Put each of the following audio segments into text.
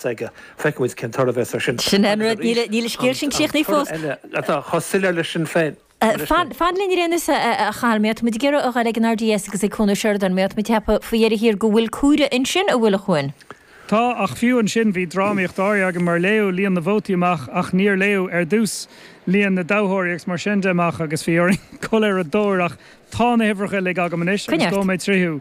s'aige. Feicfidh muid cén toradh a bheas air sin. Sin é an rud, níl an scéal sin críochnaithe fós. An toradh eile atá chomh soiléir leis sin féin. Fan linn ar aon nós, a Charl, mar táimid ag iarraidh a ghoil ag an RDS agus ag Cathal Mac Coille, mar táimid ag ceapadh faoi dheireadh thiar go bhfuil comhaireamh ansin, an bhfuil, a Chuain. Tá, ach fiú ansin bhí drámaíocht áirithe againn mar léadh líon na vótaí amach ach níor léadh ar dtús líon na dtoghthóirí agus mar sin de amach agus bhí orainn dul ar a dtóir ach tá na huimhreacha uilig agam anois agus gabhfaidh mé tríothu.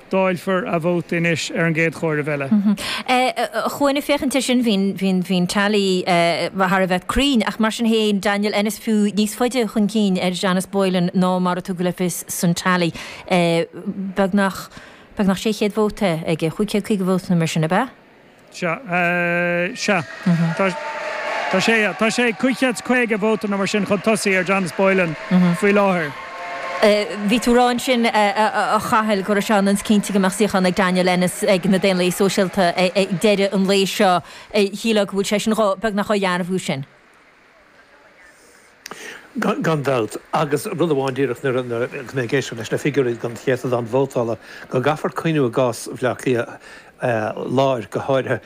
Dáilfear a vóta anois ar an gcéad chomhaireamh eile. A Chuain, ag féachaint air sin, bíonn teailí thar a bheith cruinn, ach mar sin féin, Daniel Ennis, fiú níos faide chun cinn ar Janice Boylan ná mar a tugadh le fios san teailí, beagnach 600 vóta aige, 550 vóta nó mar sin, ab ea? Sea. Sea. Tá. Tá sé. Tá sé. Cúig chéad 's caoga vóta nó mar sin chun tosaigh ar Janice Boylan faoi láthair. Bhí tú a rá ansin, a Chathail, go raibh sé ionann is cinnte go mbeadh suíochán ag Daniel Ennis ag na Daonlathaithe Sóisialta ag deireadh an lae seo. Shílfeá go bhfuil sé sin beagnach á dheimhniú sin? Gan dabht, agus rud amháin díreach, nuair a bhí mé ag éisteacht leis na figiúirí don chéatadán vótála, go gcaithfear cuimhneamh i gcás Bhleá Cliath láir go háirithe.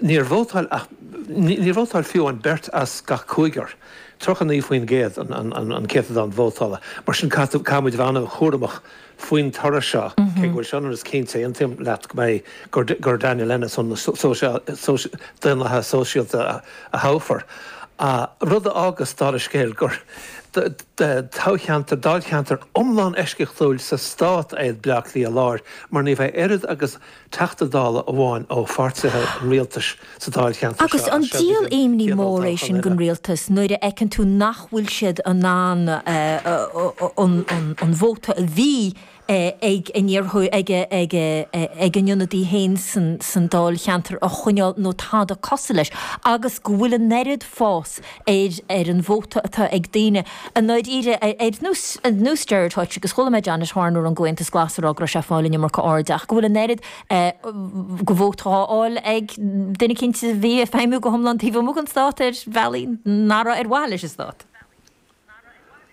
Níor vótáil ach, níor vótáil fiú an beirt as gach cúigear, 39%, an céatadán vótála. Mar sin caithfidh, caithfimid bheith an-chúramach. faoin toradh seo, cé go bhfuil sé ionann is cinnte, aontaím leat go mbeidh, gur Daniel Ennis ó na Daonlathaithe Sóisialta a thoghfar, rud a fhágas, dála scéil, gur toghcheantar, dáilcheantar iomlán eisceachtúil sa stát é Baile Átha Cliath Láir mar ní bheidh oiread agus Teachta Dála amháin ó pháirtithe an Rialtais sa dáilcheantar seo agus an díol imní mór é sin don Rialtas nuair a fheiceann tú nach bhfuil siad in ann an vóta a bhí ag a n-iarrthóir, ag a n-ionadaí féin san dáilcheantar a choinneáil nó tada cosúil leis agus go bhfuil an oiread fáis air ar an vóta atá ag daoine i ndáiríre ar nós Gerry Hutch agus chuala mé Janet Horner ón gComhaontas Glas ag rá go raibh sé ag fáil an iomarca airde ach go bhfuil an oiread de vóta á fháil ag duine cinnte a bhí ag feidhmiú go hiomlán taobh amuigh den stát ar bhealaí nach raibh ar mhaithe leis an stát.